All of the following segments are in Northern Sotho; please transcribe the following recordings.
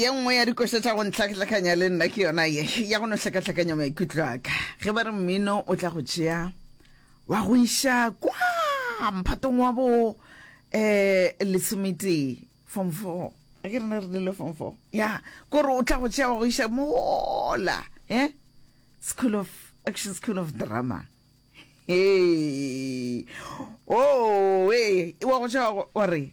ye nngwe ya dikoša tša go ntlhatlhakanya le nna ke yona ye ya go no hlakahlakanya maikutlo aka ge ba re mmino o tla go tšea wa go iša kwa mphatong wa bo eh lesometee form four a ke rena re dile form four ya kore o tla go tšea wa go iša mola eh school of action school of drama hey oh, hey. wa go tšea wa re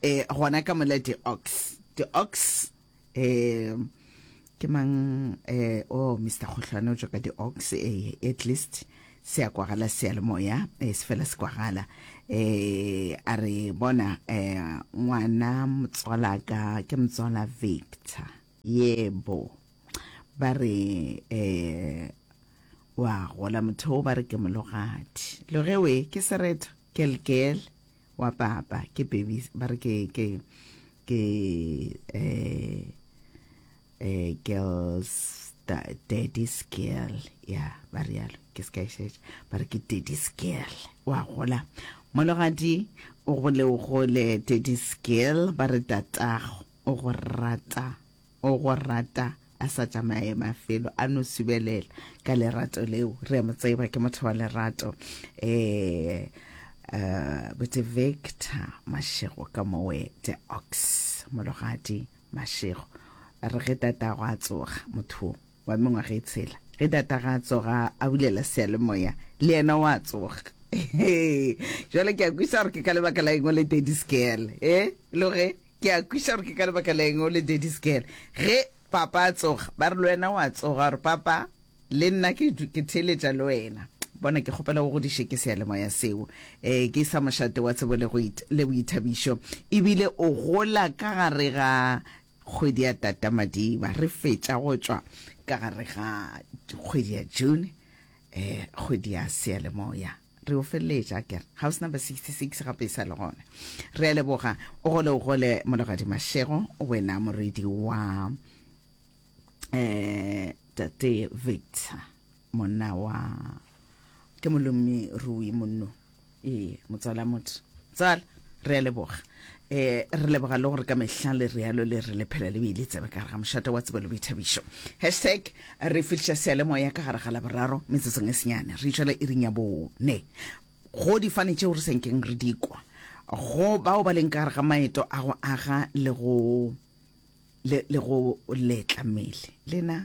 e gona ka mola di-ox di-ox um ke mang um o oh, mr kgohlwane o tswa ka di-ox um at least se ya kwagala seyalemoya um se fela se kwagala um a re bona um ngwana motswala ka ke motswala victor yebo ba re um wa gola motho o ba re ke mologadi logewe ke sereto kelkele wa papa ke baby ba re ke ke ke eh eh girls daddy's girl ya ba re yalo ke se ka e šetša ba re ke daddy's girl wa gola mologadi o gole o gole daddy's girl ba re tatago o go rata O go rata a sa tšamaye mafelo a no subelela ka lerato leo re a mo tseba ke motho wa lerato eh uh, bote Victor Mashego ka mowe the ox mologadi Mashego re ge tata go a tsoga motho wa mengwaga e tshela. Ge tatagwe a tsoga, a bulela seyalemoya, le yena o a tsoga. Jwale ke a kwiša gore ke ka lebaka la eng o le daddy's girl. E lo ge ke a kwiša gore ke ka lebaka la eng o le daddy's girl. Ge papa a tsoga, ba re le wena o a tsoga, gore papa le nna ke ke theeletša le wena. Bona, ke kgopela o godiše ke seyalemoya seo. E, ke sa mošate wa tsebo le go le boithabišo. Ebile o gola ka gare ga Kgwedi ya Tata-Madiba, re fetša go tšwa ka gare ga kgwedi ya June, eh, kgwedi ya Seyalemoya. Re yo feleletša, a kere. House number 66 gape e sa le gona. Re a leboga. O gole, o gole, Mologadi Mashego, wena morwedi wa, eh, Tate Victor. Monna wa ke molommi rui monno. Ee, motswala motho. Tsala, re a leboga. Eh, re leboga le gore ka mehla le realo le re le phela le beile tsebe ka gare ga mošata wa tsebelo boithabišo hashtag re fihliša sealemoya ka gare ga laboraro metsotsong e senyane re išwela iring ya bone go difane tšeo re senkeng re dikwa go bao ba leng ka gare ga maeto a go aga le go le go letla mmele lena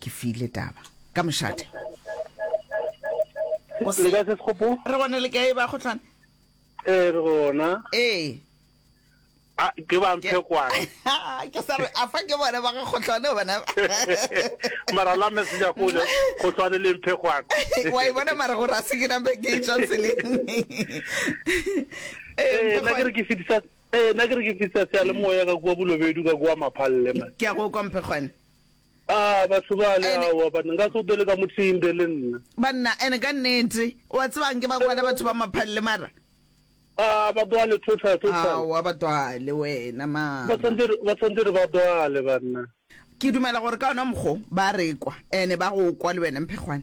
ke file taba ka mošate Go se- le kae se sekgopo re gone le kae ba kgotlana ee re gona ee a ke ba mphe kwane ke sa re a fa ke bone ba ga kgotlane bona mara la messenger go le go tshwane le mphe kwane wa e bona mara gore a se ke nampe ke e tswa tseleng Ee, ee nna ke re Mphekgwane, ke fetisa ee nna ke re ke fetisa seya le moya ka kua bolobedu ka kua maphalle man ke a go kwa mphekgwane A batho bale Ene- aowa banna nka se o bele ka mothinde le nna. banna ene ka nnete o a tsebang ke ba kwala batho ba maphalle mara A ba bale total total. ao a batwale wena Ba mara tshwanetse re- ba tshwanetse re ba bale banna. ke dumela gore ka ona mokgo ba rekwa ene ba go kwa le wena mphekgwane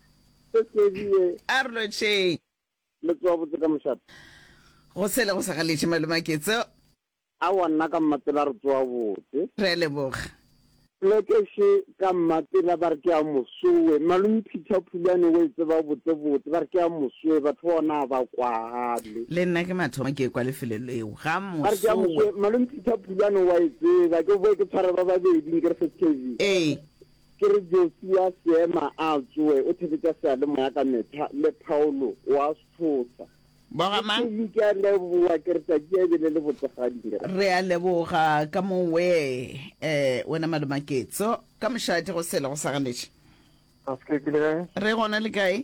Se tebiye. A re lotšheng. Le tsowa botse ka mošate. Go sele go sa galetše malome a Ketso. Aowa nna ka Mmapela re tsowa botse. Re a leboga. Lekeše ka Mmapela ba re ke a mosowe. Malome Peter Phulane o e tseba botsebotse. Ba re ke a mosowe. Batho ba ona ga ba kwagale. Le nna ke mathomo ke ekwa lefelo leo. Ga mosowe. Ba re ke a mosowe. Malome Peter Phulane o a e tseba. Ke boe ke tshware ba babedi nkere se tebiye. Ee. Ke re Josia Seema a tsoe, o thebetša seyalemoya ka mehla, le Paulo o a se tshosa. Bo ga mang? Kelly, Ke a leboa, ke re tšatši ya e be le le botse gantši. Re a leboga ka mowee. Eh, wena Malome Maketso, ka mošate go sele go sa ganetše? Ga se ke, ke le kae? Re gona le kae?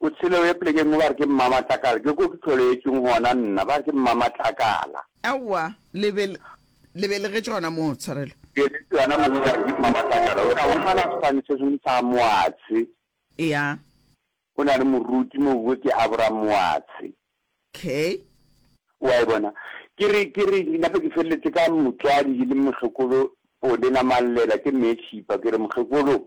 O tshele o ye plekeng mo ba re ke Mmamatlakala, ke ko ke tlholeetšweng gona nna, ba re ke Mmamatlakala. Aowa, le be, le belegetšwe gona moo, Tshwarelo. Ke belegetšwe gona moo ba re ke Mmamatlakala. O tla humana sefane se sengwe sa Moatshe. Eya. Go na le moruti moo go ke Abram Moatshe. Okay. Wa e bona. Ke re, ke re, nna be ke feleletse ka motswadi e leng Mohlokolo Pone Namallela, ke Mmeetšhipa, ke re, Mohlokolo,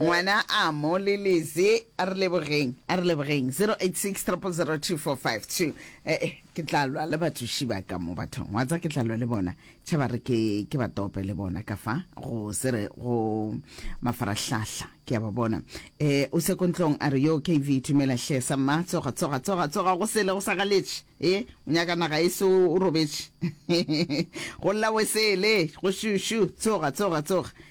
Ngwana a mo leleze a re lebogeng a re lebogeng 0860002452 eh eh ke tla lwa le batsoši ba ka mo bathong wa tsa ke tla lwa le bona tšhe ba re ke ke ba tope le bona ka fa go se re go mafarahlahla ke ya ba bona eh o se kontlong a re yo kv tumela hle sa mma tsoga tsoga tsoga tsoga go sele go sa galetše eh o nyaka naga e se o robetše go lla wesele go šušu tsoga tsoga tsoga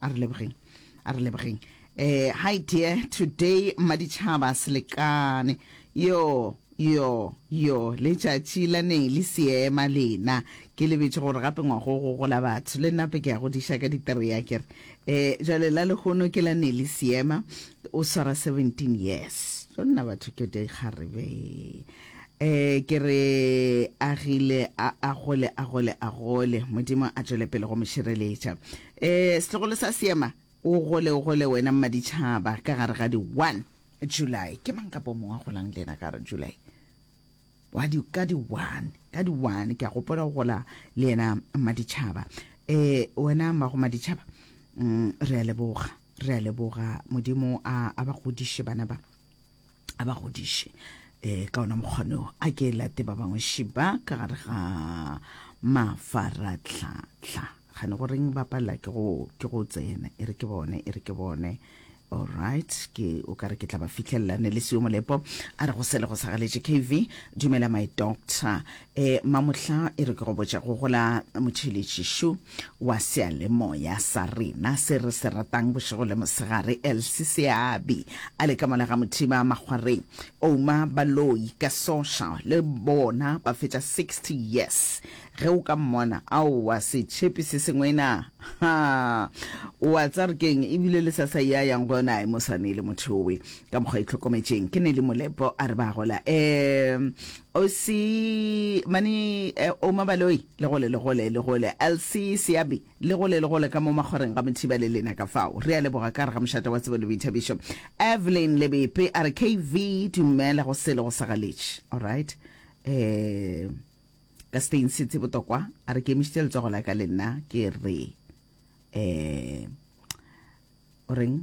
a re lebogeng a re lebogeng eh hi dear today maditšhaba selekane yo yo yo letšatši la ne le seema lena ke lebetše gore gape ngwago go gola batho le nnape ke ya go diša ka ditereya kere um jale la lehono ke la ne le seema o swara 17 years tlo nna batho ke dikgarebe Ee, ke re agile a a gole a gole a gole. Modimo a tšwele pele go mo šireletša. Ee, setlogolo sa seema, o gole o gole wena mmaditšhaba ka gare ga di 1 July. Ke mang ka po mongwe a golang le yena ka gare July? wa di ka di 1 ka di 1 ke a gopola go gola le yena mmaditšhaba eh wena mmago mmaditšhaba mm, re a leboga re a leboga modimo a a ba godiše bana ba a ba godiše um ka ona mokgwaneo a ke late ba bangwe šiba ka gare ga mafaratlhatlha gane goreng ba palela ke go tsena e re ke bone e re ke bone alright ke o ka re ke tla ba fitlhelela ne le seo molepo a re go sele go sagaletše kv dumela my doctor E, Mamohla e re ke go botša go gola motšheletšišu wa sealemoya sa rena se re se ratang bošego le mosegare, Elsie Seabi, a le ka mola ga Mothiba makgwareng, Ouma Baloyi ka Sosha, le bona ba fetša 60 years. Ge o ka mmona, aowa setšhepi se sengwe na! Ha! O a tsa re keng, e bile le sa sa ya yang go yona, ai mosane le motho yowe, ka mokgwa e tlhokometšeng, ke Nelly Molepo, a re ba gola. E, Ausi mane eh, Oma Baloi le gole le gole le gole LC Seabi le gole le gole ka mo makgwareng ga Mothiba le lena ka fao re a leboga ka re ga mošata wa tsebo le boithabišo Evelyn Lebepe a re KV dumela go sele go sa galetše alright eh ka Spain City botokwa a re ke emišitše letsogo la ka le nna ke re eh o reng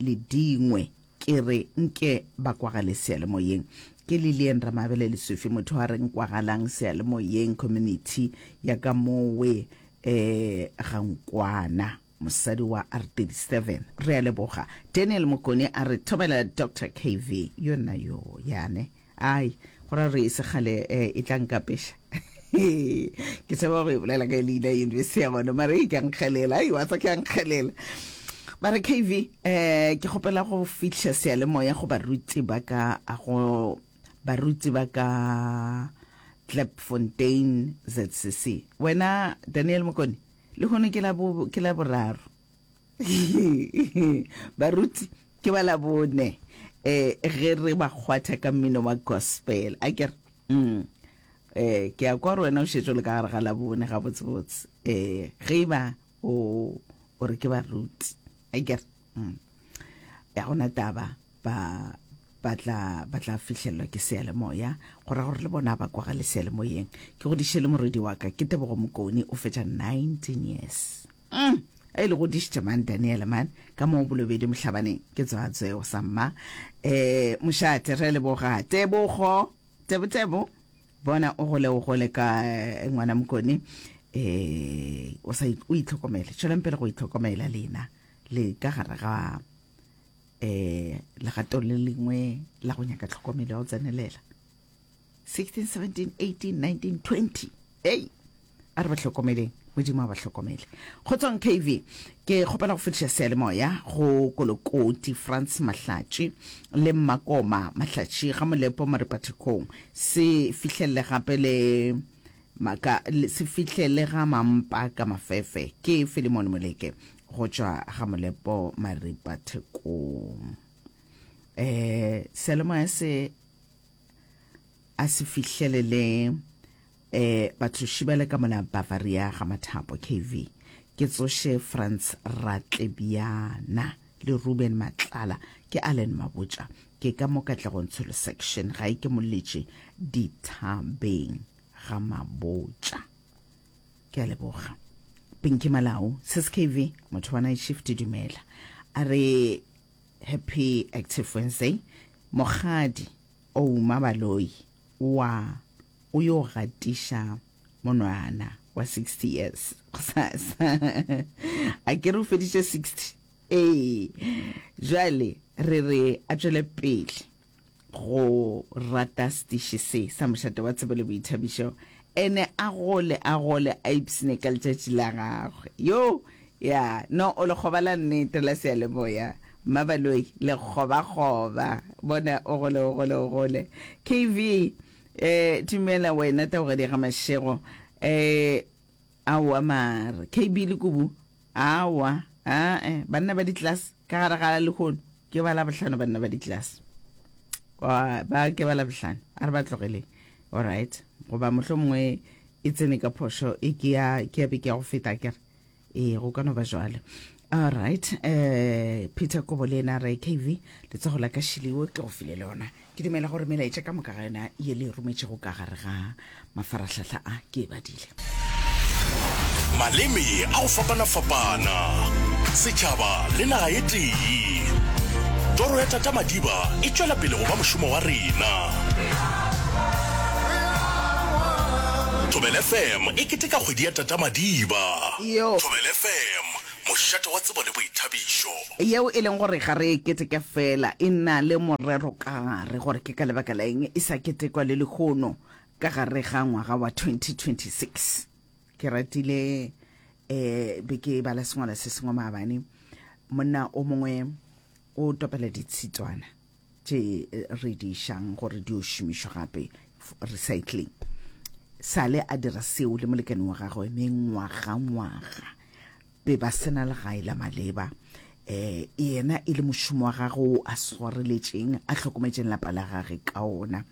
le dingwe ke re nke ba kwagale seyalemoyeng ke lillian ramabele lesofi motho a reng kwagalang seyalemoyeng community ya ka mowe eh gankwana mosadi wa r37 re a leboga daniel mokone a re thomela dr kv yona yo yane Ai, go ra gore e se kgale e tla nkapeša. Ke tseba go e bolela ka leina yunibesithi ya gona, mara e ka nkgelela, ai, wa tsa ke a nkgelela. Ba re, KV, eh, ke kgopela go fihla seyalemoya go baruti ba ka, go baruti ba ka Klipfontein, ZCC. Wena, Daniel Mokone, lehono ke la boraro. baruti ke ba labone eh ge re ba kgwatha ka mmino wa gospel a kere mm eh ke a kwa re wena o šetšo le ka gare ga labone ga botsebotse eh ge e ba o o re ke baruti a kere mm ya gona taba ba ba tla ba tla fihlelelwa ke sealemoya go ra gore le bona ba kwa ga le sealemoyeng ke godiše le morwedi wa ka ke tebogo mokone o fetša 19 years Mm, a ile godišitše man Daniel man ka mo bolobedi mohlabaneng ke tswa tseo sa mma eh mošate re leboga tebogo tebo tebo bona o gole o gole ka eh, ngwana mokone eh o sa o itlhokomele tšweleng pele go itlhokomela lena le ka gare ga eh legato le lengwe la go nyaka tlhokomelo ya go tsenelela 16 17 18 19 20 ei a re ba hlokomeleng modimo a ba hlokomele go tswang kv ke kgopela go fetiša sealemoya go kolokoti france mahlatši le mmakoma mahlatši ga molepo mo repathekong se fihlelele gape le maka se fihlele ga mampa ka mafefe ke filimone moleke go tšwa ga molepo maripathekong um sealemoya se a se fihlelele eh batloši bale ka mona bavaria ga mathapo kv ke tsoše franz ratlebiana le ruben matlala ke allen mabotša ke ka mo katlegong tsholo section ga e ke moletše dithabeng ga mabotša ke a leboga pinki malao sis kv motho wa night shift dumela a re Happy Active Wednesday. Mogadi Ouma Baloi wa o yo gatiša monwana wa 60 years gosasa. A ke re o feditše 60? Ee. Jwale re re a tšwele pele. go rata sediši se sa mošate wa tsebo le boithabišo ene a gole a gole a ipsine ka letšatši la gagwe yo ya no o lekgoba la nnete la seyalemoya mmabaloi lekgobakgoba bona o gole o gole o gole kv eh tumela wena taogadi ga mašego eh Aowa mare KB le Kubu aowa aa banna ba di class ka gare ga lehono ke ba labohlano banna ba di class ba ke ba labohlano a re ba tlogeleng alright goba mohlo mongwe e tsene ka phošo e ke ya ke ya be ke ya go feta kere ee go ka no ba jwalo all right um peter kobo le ena re kv letsogo la ka shiliwo ke go file le yona ke dumela gore melaetša ka moka ga yona ye le e rometšego ka gare ga mafaratlhatlha a ke e badile maleme a go fapana-fapana setšhaba le naga e tee toro ya tata madiba e tšwela pele go ba mošomo wa rena thobel fm e keteka kgwedi ya tata madiba yo thobel fm mošate wa tsebo le boithabišo. Yeo e leng gore ga re e keteke feela, e na le morero ka gare gore ke ka lebaka la eng e sa ketekwa le lehono ka gare ga ngwaga wa 2026. Ke ratile um be ke bala sengwalo se sengwe maabane, monna o mongwe o topela ditshitswana. tše re di šang gore di o šomišwa gape recycling sale a dira seo le molekane wa gagwe mengwagangwaga be ba sena legae la maleba um yena e le mošomo wa gagwe o a swareletšeng a hlokometšeng lapa la gage ka ona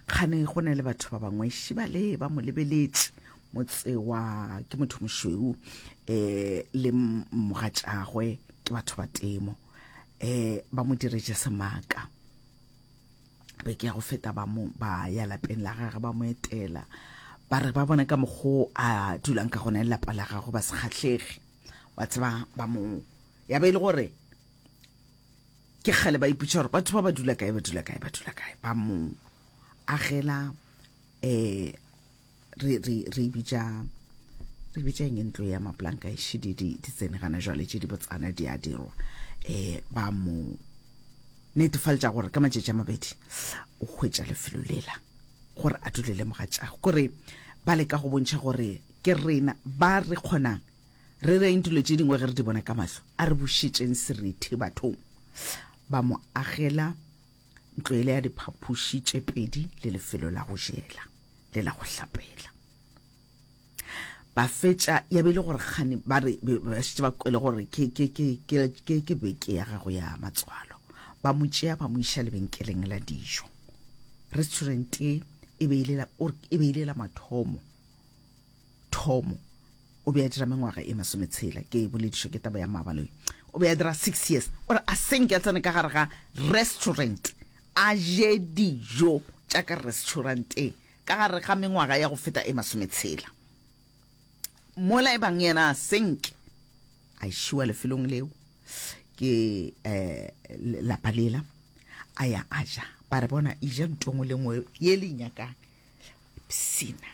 kgane go na le batho ba bangwe šibale ba mo lebeletše motse wa ke motho mošweu um le mogatšagwe ke batho ba temo eh ba mo diretše semaka be ke ya go feta ba mo ba ya lapeng la gagwe ba mo etela ba re ba bona ka mokgwa a dulang ka gona lelapa la gagwe ba se kgatlhege wa tseba ba mo ya be e le gore ke kgale ba iputša gore batho ba ba dula kae ba dula kae ba dula kae ba mo agela um re re re bitša re bitša eng ntlo ya maplanka e šidi di di tsene gana jwale tše di botsana di a dirwa eh ba mo netefaletša gore ka matšatši a mabedi o hwetša lefelo lela gore a dule le mogatšago kore ba leka go bontšha gore ke rena ba re kgonang re reng dilo tše dingwe ge re di bona ka mahlo a re bošetšeng serethe bathong ba mo agela ntlo ele ya diphaphuši tše pedi le lefelo la go jela le la go hlapela ba fetša ya be e le gore kgane ba re ba šetse ba kwele gore ke beke ya gago ya matswalo ba mo tšea ba mo iša lebenkeleng la dijo restaurant e be e le la mathomo Thomo o be a dira mengwaga e masometshela ke e boledišwa ke taba ya Mabaloi. O be a dira six years o re a senke a tsene ka gare ga restaurant a je dijo tša ka restauranteng ka gare ga mengwaga ya go feta e masometshela mola e bang yena a senke a šiwa lefelong leo ke eh, lapa lela a ya a ja ba re bona e ja ntongo le ngwe ye le nyakang psina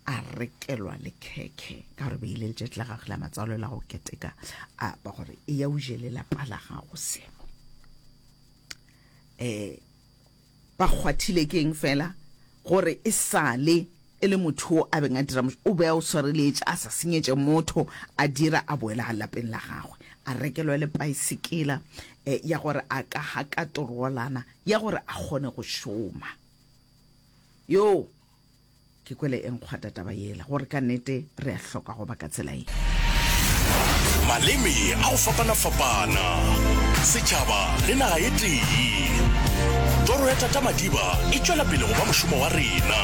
a rekelwa le khekhe ka gore be ile letšatši la gagwe la matswalo la go keteka a ba gore e ya o jele lapa la gago seno um ba kgwathile ke eng fela gore e sale e le motho o a beng a dira o be a o swareletše a sa senyetše motho a dira a boela ga lapeng la gagwe a rekelwa le paesekela um ya gore a ka ga ka torolana ya gore a kgone go šoma Yoo! Ke kwele e nkgwata taba yela, gore ka nete re a hloka go ba ka tsela ye. Maleme a go fapana-fapana, setšhaba le naga e tee. Toro ya Tata Madiba e tšwela pele go ba mošomo wa rena.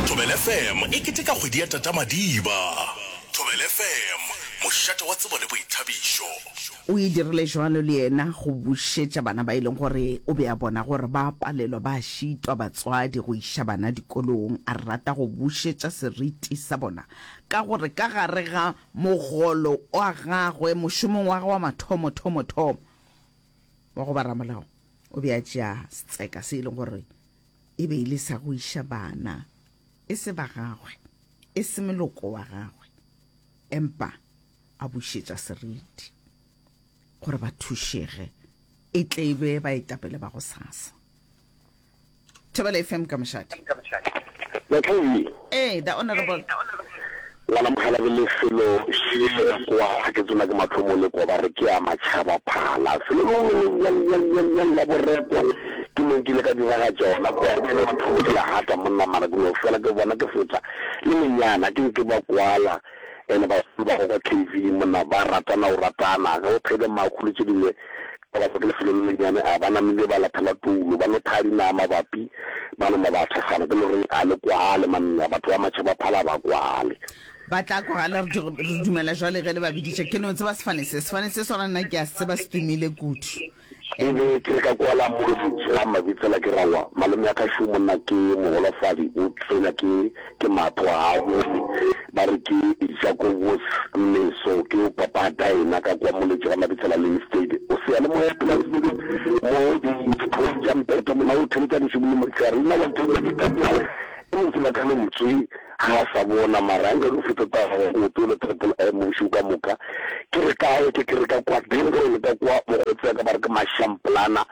Thobela FM e keteka kgwedi ya Tata Madiba. Thobela FM, mošate wa tsebo le boithabišo. O e dirile jwalo le yena go bušetša bana ba e leng gore o be a bona gore ba a palelwa ba a šitwa batswadi go iša bana dikolong. A rata go bušetša seriti sa bona ka gore ka gare ga mogolo wa gagwe, mošomong wa gagwe wa mathomothomothomo wa go ba ramolao, o be a tšea setseka se e leng gore e be e le sa go iša bana, e se ba gagwe, e se moloko wa gagwe, empa a bušetša seriti gore ba thušege e tle e be baetapele ba go sasa thobela fm ka mošate ee the honorable ngwana mogala ke lefelo kwa ga ke tsona ke mathomo le kwa ba re ke a matšhaba phala felo lengwe la borepo ke mo nkile ka diraga tsona kwa ba le mathomo ke la gata monna mara ke no fela ke bona ke fetsa le menyana ke nke ba kwala and bagolo ba go kwa KV monna ba ratana go ratana ge o phele maku le tše dingwe ka batho ke lefelo le lennyane a ba namile ba lathela toulo ba no thaya dinaa mabapi ba nama ba thekgana ke no re a le kwale manna batho ba matšhaba phala ba kwale ba tla kwagala re re dumela jwale ge le ba biditše ke no tseba sefane se sefane se sona nna ke a se tseba se tumile kudu Ke be ke le ka kwala mo lefetše ga mabi fela ke ra wa malome ya ka šo monna ke mogolofadi o tswenya ke ke matho ga a bone ba re ke Jacobus Mmeso ke yo papata yena ka kwa moletše ga mabi fela le instead o seyalemoya plasini mo di diphong tša mpeto mona o theletša dišobolomo tša rena wa ke be ke ka kwa e mong fela ka lentswe Ga a sa bona, mara a nka no feta taga go oto le Triple M gešo ka moka. Ke re ka e, ke ke re ka kwa Denville le ka kwa mo go tseka ba re ke Mashamplana.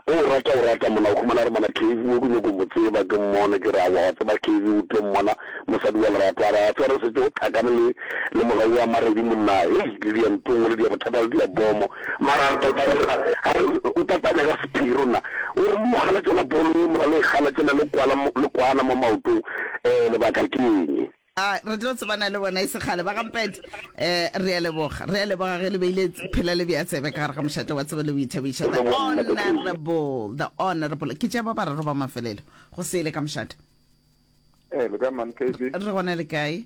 O o rata, o rata monna. O humana re monna Kevy o ke nyoko mo tseba ke mmone. Ke re aowa wa tseba Kevy o tlo mmona mosadi wa lerato. A re a tshware setse o tlhakane le le mora wa Maredi monna. Hei le dia ntongo le dia bothata le dia bomo. Mara re tla taboga a re o tla tanya ka sephiri nna. O re mo gana tšona bolo e mora le e gana tšena le kwala le kwana mo maotong. Ee, lebaka ke eng? A re tlo tsebana le bona e se kgale. Ba ga Mpete, ee, re a leboga. Re a leboga ge le beile phela le bea tsebe ka gare ga mošate wa tsebo le boithabišo. The Honourable, The Honourable. Ke tša ba bararo ba mafelelo go sele ka mošate. Ee, le kae, Ma'am Kaylee? Re gona, le kae?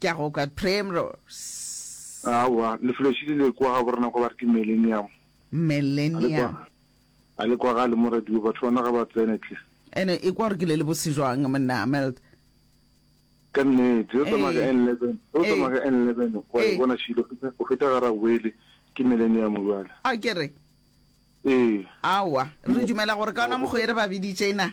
Ke a go kwa Primrose. Aowa, lefelo šele le kwa ga borena kwa ba re ke Mellenium. Mellenium. A le kwagale mo radio, batho ba naga ba tsene tle. Ene e kwa gore ke le le bose jwang monna Meld. Ka nnete, yo tsamaya ka N11, yo tsamaya ka N11 wa e bona šele o feta ga Rabuele ke Mellenium bjale. A ke re? Ee. Aowa, re dumela gore ka ona mokgwa e re ba biditše na?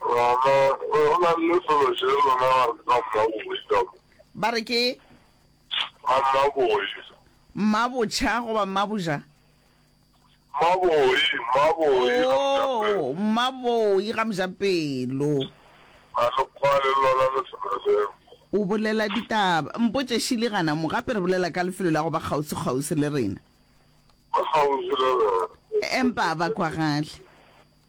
Rama, Go na le selo se lona ba re ka mmaboi ka mo. Ba re ke? Ka mmaboi. Mmabotšha goba mmaboja? Mmaboi, mmaboi ga mojapelo. Oh, mmaboi ga mojapelo. Ga le kwane lona le selo seo. O bolela ditaba. Mpotše Shirley gana mo, gape re bolela ka lefelo la go ba kgauswi-kgauswi le rena. Ba kgauswi le rena. Empa a ba kwagale.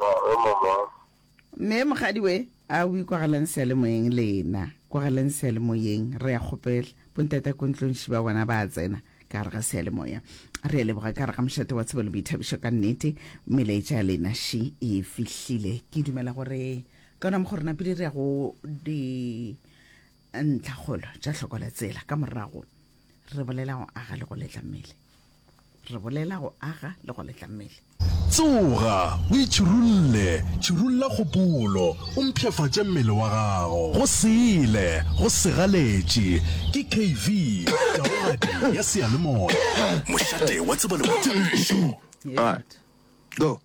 Ee, mama. Mme mogadi we, a o ikwagelang seyalemoyeng lena. Kwagelang seyalemoyeng, re a kgopela. Bontate ko ntlong šiba bona ba tsena ka gare ga seyalemoya. Re a leboga ka gare ga mošate wa tsebo le boithabišo ka nnete. Melaetša ya lena ši e fihlile. Ke dumela gore ka ona mokgo rena pele re ya go di ntlhakgolo tša hloko la tsela ka morago. re bolela go aga le go letla mmele re bolela go aga le go letla mmele tsoga o itšhirulle tšhirulla kgopolo o mpšhafatše mmele wa gago go sele go segaletše ke kv taogadi ya seyalemoya mošate wa tseba le go